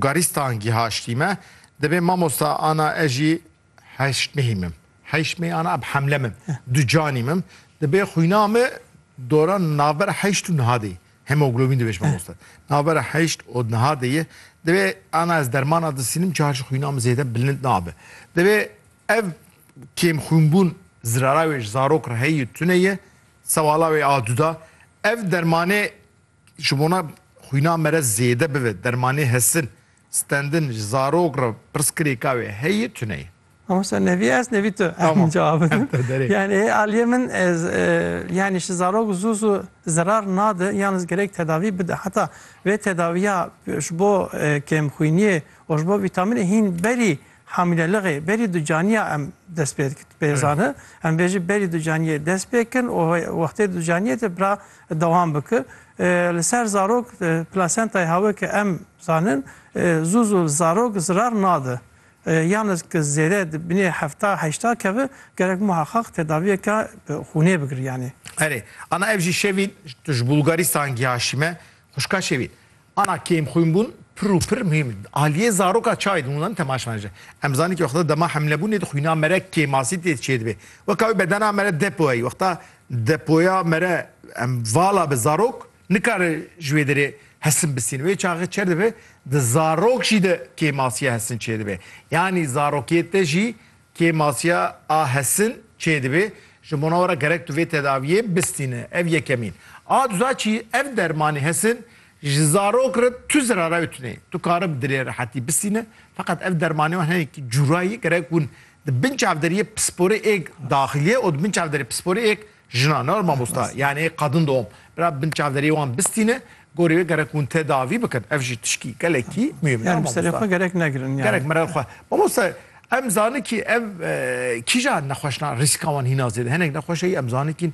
Garîstan gîhaştî me, dibê mamosta ana ez jî heşt mehî mim. Heşt mehî ana em hemle mim. Du canî mim. Dibê xwîna me dora navbera heşt û niha de ye. Hemoglobîn dibê ji mamosta. Navbera heşt û niha de ye. Dibê ana ez dermana disînim çar ji xwîna min zêde bilind nabe. Dibê ev kêmxwînbûn zirara wê ji zarok re heye tune ye. Sewala wê a du da. Ev dermanê Ji bona xwîna me re zêde bibe dermanê hesin, stendin ji zarok re pirsgirêka wê heye tune ye. Mamosta nevî ez nevî tu em cevab bidin. Yanî aliyê min yanî ji zarok zû zû zerar nade yalnîz gerek tedavî bide. Heta vê tedawiya ji bo kêmxwîniyê û ji bo vîtamînê hîn berî Hamîleliqê berî du caniya em dest pê dikin. Tu pê zani em bêjin berî du caniyê dest pê kin û wextê du caniyê de bira dewam biki. Li ser zarok plasentayê ha weke em zanin zû zû li zarok zirar nadi. Yan ez ki zêde di binê hefta heşta kevi gerek muheqeq tedaviyeke bi xûnê bigiriyanê. Erê, ana ev jî şevîn tu ji Bulgaristan gihaşîme. Xwişka şevîn, Ana kêm xwîn bûn pir û pir muhîm in. Aliyê zaroka çayê di hûnan temaş me ji. Em zanin ke wexta dema hemlebûnê di xwîna me re kêmasî tê çêdibê. Weka wî bedena me re depo heyî. Wexta depoya me re em vala bi zarok nikare ji wê derê hesin bisîn. Wê çaxê çer dibe di zarok jî de kêmasiya hesin çêdibê. Yanî zarokê te jî Kêmasiya a hesin çê dibê, ji bona we re gerek tu vê tedawiyê bistîne. Ev yekemîn. A duza çî, ev dermanê hesin ji zarok re tu zirara wê tune ye. Tu kare bi dilê rehetî bistîne. Feqet ev dermanê wan hene ki cûrayî gerek hûn di bin çavderiyê pisporê êk daxilî ye û di bin çavderê pisporê êk Jina nar mamosta yanê qadin dom bira bin çavderiyê wan bistîne gorî wê gerek hûn tedavî bikin ev jî tişkî gelekî muhîm nar mamosta. Serê xwe gerek negirin yani. Gerek mirer xwe. Mamosta em zanin kî ev kîja nexweşna rîska wan hîna zêde hinek nexweşeyî em zanin kîn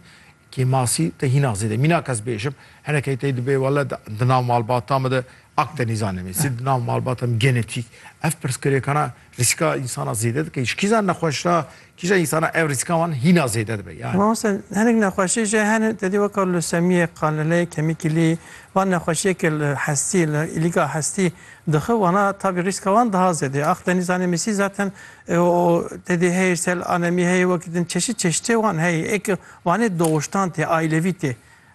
kî masî te hîna zêde mînak ez bêjim hinekeyî tey dibê wele di nav malbata min de akdenîzan em ê sî di nav malbata min genetîk ev pirsgirêkana Rîska însana zêde dike. Ji kîjan nexweşa kîjan însana ev rîska wan hîna zêde dibe yani. Mamoste hinek nexweşî jî hene tedî weka lûsemiyê, qaneleyê, kemîkîlî van nexweşiyeke li hestî li îlîga hestî dixi wana tabî rîska wan diha zêde ye. Ax tenî zanê mîsî zaten o tedî heyê sel anemî heyê wekî din çeşît çeşitê wan heyê eke wanê doxuştan tê aîlevî tê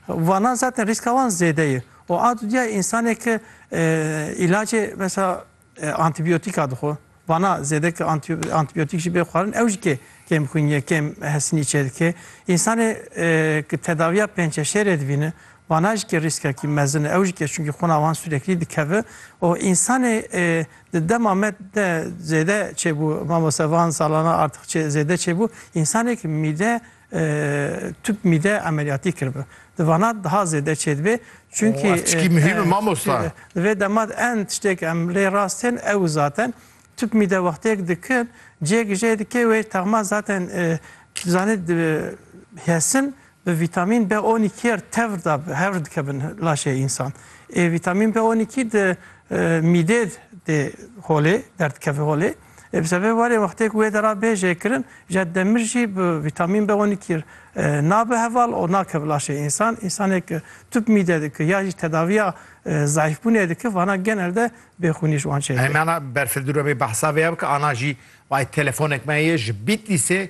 wana zaten rîska wan zêde ye û a dudiya însaneke îlacê mesela Antîbîyotîka dixwe. Vana zêde ke antîbîyotîk jî bê xwarin ew jî kê kêmxwînîye, kêm hesinî çêdike. Însanê ke tedawîya pênçeşêrê dibîne vana jî kê rîskekî mezin e. Ew jî kê çunkî xwina wan sureklî dikeve û însanê di dema me de zêde çêbû, mamoste van salana artix zêde çêbû, însanê ke mîde Tüp mide emeliyatî kiribi. Di vana daha zêde çêdibê çunkî. Ev çikî muhîm e mamosta. Di vê dema de en tiştêk em lê rast tên ew û zaten tüp mide wextêk dikin cêk jê dike wê texma zaten tu zanî di hesin bi vîtamîn B on îkî re tevr da hevr dikevin laşê însan. Ê vîtamîn B on îkî di mîdê dê holê derdikeve holê. Ê bi sebê warê wextê ku wê dera bê jêkirin ja demir jî bi vîtamîn B on iki nabe heval û nake bi laşê însan. Însanê ku tûp mîde dike ya jî tedaviya zayîfbûnê dike vana genel de bêxûnî ji wan çêdibe. Hemana berfirdir webê behsa vê ya bike ana jî wayê telefonek me heye ji Bîtlîsê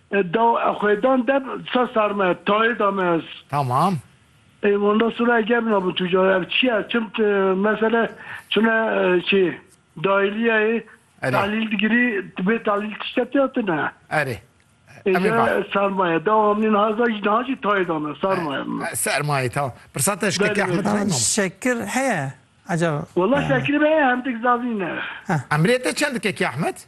Daw e xwedan de sa sar me tayê da me ez. Tamam. Ê wenda sura e gerna bu tu cay ev çiya çim mesele çuna çi dayiliya ê talil digiri bê talil tişte tê tu ne. Erê. Êca sermaye da amlin haza jî daha jî tayê da me sermaye. Sermaye tamam. Pirsa te şkekê Ahmet Reyna. Şekir heye. Acaba. Wala şekir be hem dik zavîne. Emrê te çend dikekî Ahmet?